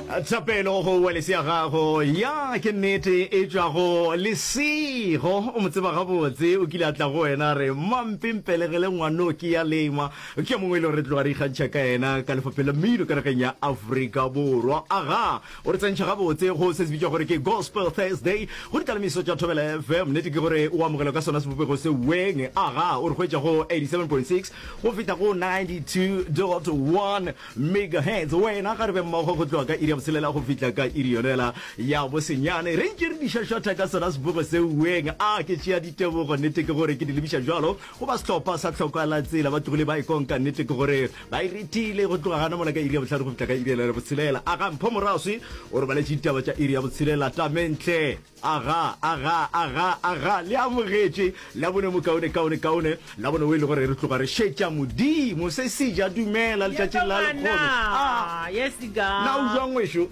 Thapelo go Wales ya gago. Ya, ke nnete, e tšwa go Lesego. O mo tseba gabotse. O kile a tla go wena a re, Mma, mpe mpelegele ngwanoki ya lengwa. Ke yo mongwe e lego re tloga re ikgantšha ka yena ka Lefapheng la Mmino ka nageng ya Afrika Borwa. Aga, o re tsentšha gabotse go se se bitšwa gore ke Gospel Thursday go ditalamisiso tša Thobela FM. Nnete ke gore o amogelwa ka sona sebopego se weng. Aga, o re hwetša go 87.6 go fihla go 92.1. Megahertz, wena ga re be mmogo go tloga ka iri ya botshelela go fihla ka iri yonela ya bosenyane, re ntše re di šwašwatha ka sona sebogo seuweng. A ke tšea ditebogo? Nnete ke gore ke di lebiša bjalo go ba sehlopha sa Tlhokoalatsela. Ba tlogile ba e konka. Nnete ke gore ba e rethile go tloga gana mola ka iri ya bohlano go fihla ka iri yonela ya botshelela. Aga Mpho Moraswi o re baletše ditaba tša iri ya botshelela. Tamentle. Aga, aga, aga, aga, le amogetše, Labone mokaone, kaone, kaone, Labone o e le gore re tloga re šetša Modimo, se seja, dumela, letšatšing la lekgono. A, na o jwang ngwešo?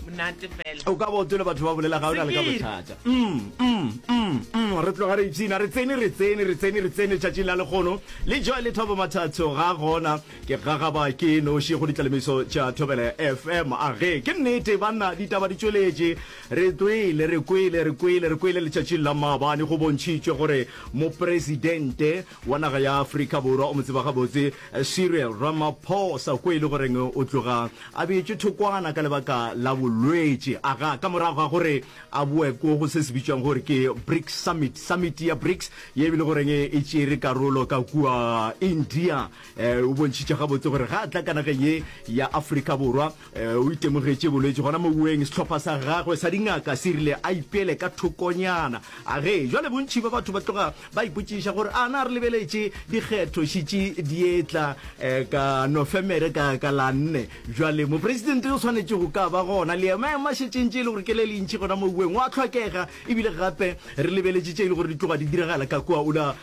O ka ba o tole batho ba bolela ga o na le ka bothata. Mm, mm, mm, mm, re tloga re ipshina, re tsene, re tsene, re tsene, re tsene letšatšing la lekgono. Le Joy le Thabo Mathatso ga gona, ke gagaba ke noši go ditlalemiso tša Thobela FM. Age, ke nnete, banna, ditaba di tšweletše. Re tswile, re kwele, re kwele, re kwele letšatšing la maabane go bontšhitšwe gore Mopresidente wa naga ya Afrika Borwa o mo tseba gabotse Cyril Ramaphosa ko e le goreng o tloga a beetšwe thokwana ka lebaka la bolwetši aga ka morago ga gore a boe ko go se se bitšwang gore ke BRICS Summit, Summit ya BRICS ye e le goreng e tšere karolo ka kua India. O bontšhitše gabotse gore ga a tla ka nageng ye ya Afrika Borwa, O itemogetše bolwetši gona moweng. Sehlopha sa gagwe sa dingaka se rile a ipeele ka thokonyana. A re, Jwale bontši bja batho ba tloga ba ipotšiša gore a na re lebeletše dikgetho šitše dietla ka Nofemere ka ka la nne. Jwale mopresidente o swanetše go ka ba gona. Le maemo a šetšeng tše e le gore ke le lentši gona moweng o a hlokega ebile gape re lebeletše tše e le gore di tloga di diragala ka kua o la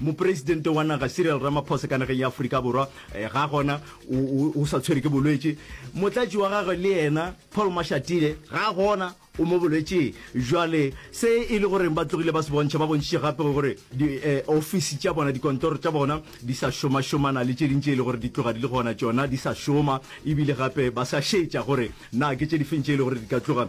Mopresidente wa naga Cyril Ramaphosa ka nageng ya Aforika Borwa ga gona, o sa tshwere ke bolwetše. Motlatši wa gagwe le yena Paul Mashatile ga gona, o mo bolwetšeng. Jwale se e le goreng ba tlogile ba se bontšha, ba bontšitše gape gore diofisi tša bona, dikontoro tša bona di sa šomašomana le tše ding tše e le gore di tloga di le gona tšona di sa šoma, ebile gape ba sa šetša gore na ke tše difeng tše e le gore di ka tloga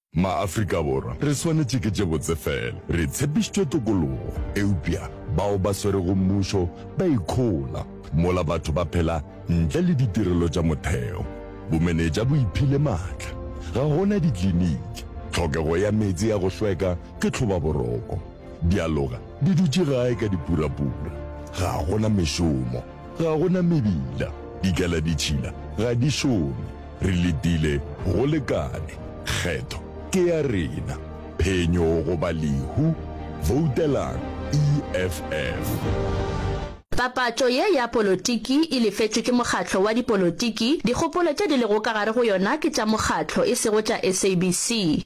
Ma-Afrika Borwa re swanetše ke tše botse fela. Re tshepišitšwe tokologo, eupša bao ba swerego mmušo ba ikhola mola batho ba phela ntle le ditirelo tša motheo. Bomenetša bo iphile matla. Ga go na dikliniki. Tlhokego ya meetse ya go hlweka ke tlhobaboroko. Dialoga di dutše gae ka dipurapura. Ga go na mešomo. Ga go na mebila, dikaladitšhila ga di šome, re letile go lekane, kgetho ke ya rena. Phenyo goba lehu, voutelang EFF. Papatšo ye ya polotiki e lefetšwe ke mokgatlo wa dipolotiki, dikgopolo tše di lego ka gare go yona ke tša mokgatlo, e sego tša SABC.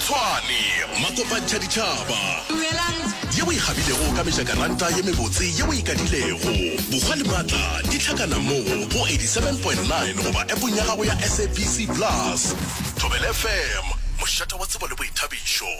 Tshwane, makopantšha ditšhaba. Dumelang. Yeo e kgabilego ka mejakaranta ye mebotse yeo e kadilego. Bokgwa le matla di hlakana mo go 87.9 goba appong ya gago ya SABC Plus. Thobela FM, mošate wa tsebo le boithabišo.